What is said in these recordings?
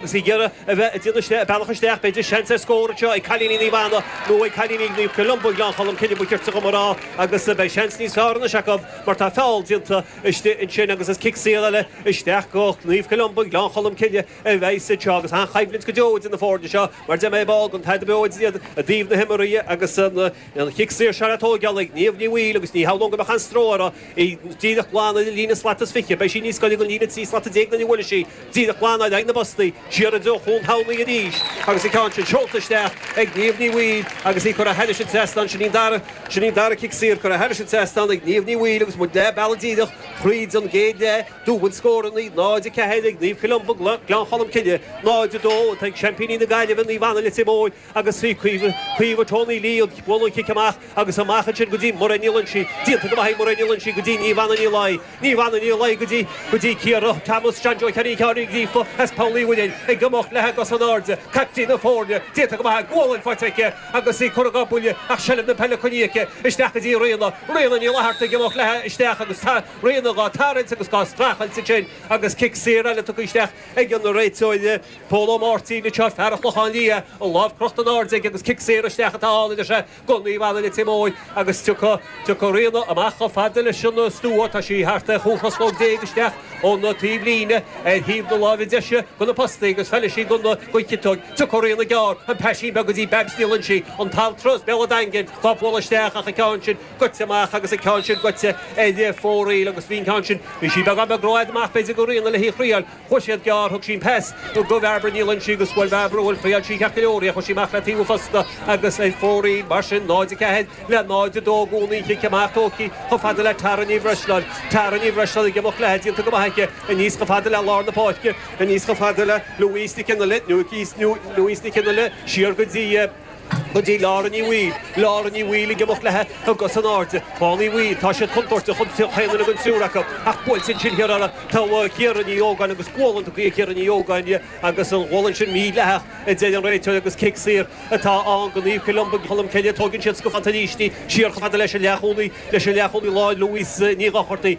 Is í Ciara a bheith i d'fhianaise a bealach isteach, b'fhéidir. Seans ar scór anseo ag cailíní Naomh Anna nó ag cailíní Naomh Columba i nGleann Cholm Cille, ba cheart dom a rá agus beidh seans níos fearr anois acu mar tá feall déanta istigh ansin agus is cic saor eile isteach go Naomh Columba, Gleann Cholm Cille a bheidh sa seo agus an-choimhlint go deo idir na foirne seo mar a dúirt mé ar ball den Tadhg Bioid iad i dtaobh na himeartha agus an chic saor seo le tóigeál ag Niamh Ní Bhaoill agus ní shamhlóinn go mbeadh aon stró uirthi í díreach glan ar an líne slat is fiche, beidh sí níos goire don líne trí slat déag nuair a bhuailfidh sí. Díreach glan ar aghaidh na bpostaí, siar i dtreo Chuan Shamhnaí arís agus an ceann sin seolta isteach ag Niamh Ní Bhaoill agus í curtha thairis an trasnán. Sin an dara cic saor curtha thairis an trasnán ag Niamh Ní Bhaoill agus muid leath bealaigh díreach thríd an gcéad leath. Dúbailt scóranna, 0, 4, ag Naomh Columba, Gleann Cholm Cille, 0, 2, atá ag seaimpíní na Gaillimhe, Naomh Anna Leitir Móir. agus is í Caoimhe Tony Lee ag bualadh cic amach agus amach ansin go dtí Mairéad Ní Loingsigh, déanta go maith ag Mairéad Ní Loingsigh go dtí Niamh Anna Ní Laighin, Niamh Anna Ní Laighin go dtí go dtí Ciara Thomas, John Joe Ciara Ciara Ní Ghríofa as Poll Uí Mhuirinn ag imeacht léi i gcos in airde, caiptín na foirne, déanta go maith aici, gualainn faighte aici agus í curtha dhá buille ach seilbh na peile coinnithe aici, isteach go dtí Ríona, Ríona Ní Fhlatharta ag imeacht léi isteach agus tá Ríona dhá tarraingt agus dhá streachailt ansin agus cic saor eile tugtha isteach ag an réiteoir. Pól Ó Máirtín, réiteoir fear an Chlochán Liath, an lámh crochta in airde aige agus cic saor isteach atá ann a deir sé go Naomh Anna Leitir Móir agus tiocfaidh, tiocfaidh Ríona amach chomh fada leis an stua, tá sí thart ar chúig thruslóg déag isteach ón taobh líne ar thaobh na láimhe deise go na postaí agus feilfidh sí don, don chiotóg, tiocfaidh Ríona gearr, an paisín beag go dtí Babs Ní Loingsigh, an t-altra as Béal a' Daingin, dhá bualadh isteach ach an ceann sin goite amach agus an ceann sin goite ar fóraoil agus bhí an ceann sin, bhí sí beagán beag ró fhad amach b'fhéidir go Ríona le hí a thriáil, Chuaidh siad gearr thug sí an pas go Bhairbre Ní Loingsigh agus bhuail Bairbre bhuel bhuail sí ceart go leor í ach chuir sí amach le taobh an phosta agus ar fóraoil mar sin 0, 4, le 0, 2 i gcónaí an chic amach tóigtí chomh fada le Tara Ní Bhreisleáin Tara Ní Bhreisleáin ag imeacht léithi déanta go maith aici aníos chomh fada le lár na páirce aníos chomh fada le Louise Nic Fhionnghaile Louise Nic Fhionnghaile siar go dtí go dtí Lára Ní Bhaoill. Lára Ní Bhaoill ag imeacht leithe i gcos in airde. Clann Uí Bhaoill, tá siad contúirteach chaon cheann den triúr acu, ach buailfidh siad siar orthu. Togha Chiara Ní Ógáin agus gualainn tugtha ag Ciara Ní Ógáin agus an ghualainn sin mídhleathach a deir an réiteoir agus cic saor atá ann go Naomh Columba, Colm Cille. Tógann siad sciobtha tailísní siar chomh fada leis an leath-chúlaí leis an leath-chúlaí láir Louise Ní Dhochartaigh.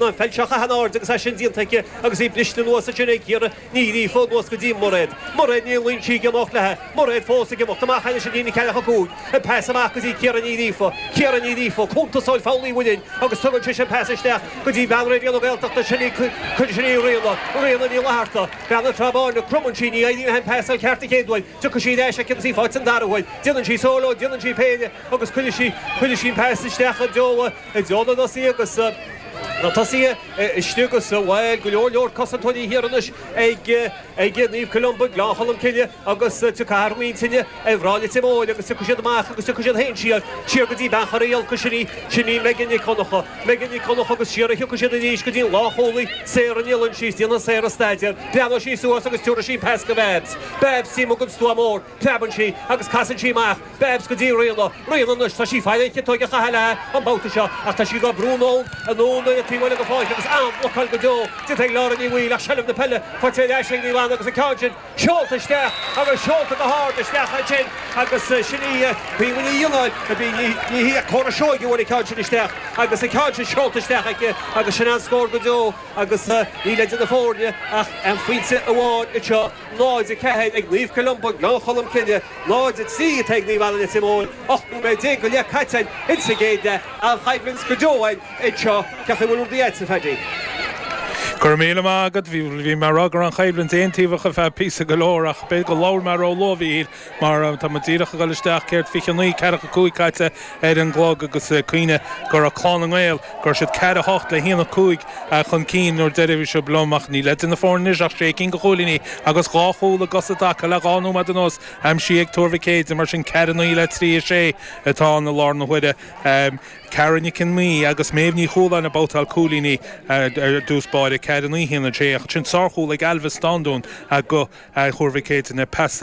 na felchacha an-ard agus é sin déanta aici agus í briste anuas ansin ag Ciara Ní Ghríofa anuas go dtí Mairéad. Mairéad Ní Loingsigh ag imeacht léithi. Mairéad fós ag imeacht amach anois ag líne ceathracha a cúig. An pas amach go dtí Ciara Ní Ghríofa. Ciara Ní Ghríofa, cuntasóir Pholl Uí Mhuirinn agus tugann sise an pas isteach go dtí bean Raidió na Gaeltachta sin í cuireann sin í Ríona, Ríona Ní Fhlatharta, bean na Trá Báine. Cromann sí ní éiríonn an pas i gceart an chéad uair. Tiocfaidh sí ar ais aici agus í fáighte an dara huair. Déanann sí sóló, déanann sí péire agus cuireann sí, cuireann sí an pas isteach go dtí. I dtreo na dtosaithe agus na tosaithe istigh agus sa bhaile, go leor leor cosantóirí thiar anois ag ag Naomh Columba, Gleann Cholm Cille agus tiocfaidh muintir Naomh Anna Leitir Móir agus tiocfaidh siad amach agus tiocfaidh siad féin siar siar go dtí Bean Chorraí Olcais sin í sin í Megan Nic Dhonncha Megan Nic Dhonncha agus siar a thiocfaidh siad arís go dtí an lánchúlaí Sarah Ní Loingsigh déanfaidh Sarah staidéar breathnóidh sí suas agus tiúrfaidh sí an pas go Babs Babs Tí mo gcuid stuaim ór Preabann sí agus casann sí amach Babs go dtí Ríona. Ríona, Anois tá sí ag faire an chiotóg a chaitheamh léi an babhta seo ach tá sí dhá brú anonn anonn ar an taobh eile den pháirc agus an-bhlocáil go deo déanta ag Laura Ní Bhaoill ach seilbh na peile faighte ar ais ag Ríona agus an ceann sin seolta isteach agus seolta go hard isteach ansin agus sin í Caoimhe Ní Fhionnáin a bhí Ní hí ach Córa Seoighe a bhain an ceann sin isteach agus an ceann sin seolta isteach aici agus sin an-scór go deo agus níl idir na foirne ach aon phointe amháin anseo. Náid a ceathair, ag Naomh Columba, Gleann Cholm Cille, náid a trí, atá ag Naomh Anna Leitir Móir, 18 nóiméad go leith caite in sa gcéad leath, an-choimhlint go deo anseo, cén chaoi a bhfuil rudaí agat, a Phaddy. Go raibh míle maith agat, bhí mé ag rá go raibh an choimhlint aontaobhach ar feadh píosa go leor ach b'fhéidir go labhair mé róluath, a Mhíchíl. Mar tá muid díreach ag dul isteach, céard, fiche a naoi, ceathracha a cúig caite ar an gclog agus cuimhnigh go raibh Clann na nGael, go raibh siad ceathair a hocht le haon a cúig chun cinn an uair dheiridh a raibh sibh liom, ach níl idir na foirne anois ach sé cinn de chúilíní agus dhá chúl acu sin tagtha le dhá nóiméad anuas aimsithe ag Tuar Mhic Éadaigh mar sin ceathair a naoi le trí a sé atá ann i láthair na huaire. Cara Nic an Mhí agus Méabh Ní Chualáin ag babhtáil cúilíní ar dtús báire, ceathair a naoi haon a sé, ach ansin sárchúl ag Ailbhe Stándún do Thuar Mhic Éadaigh, pas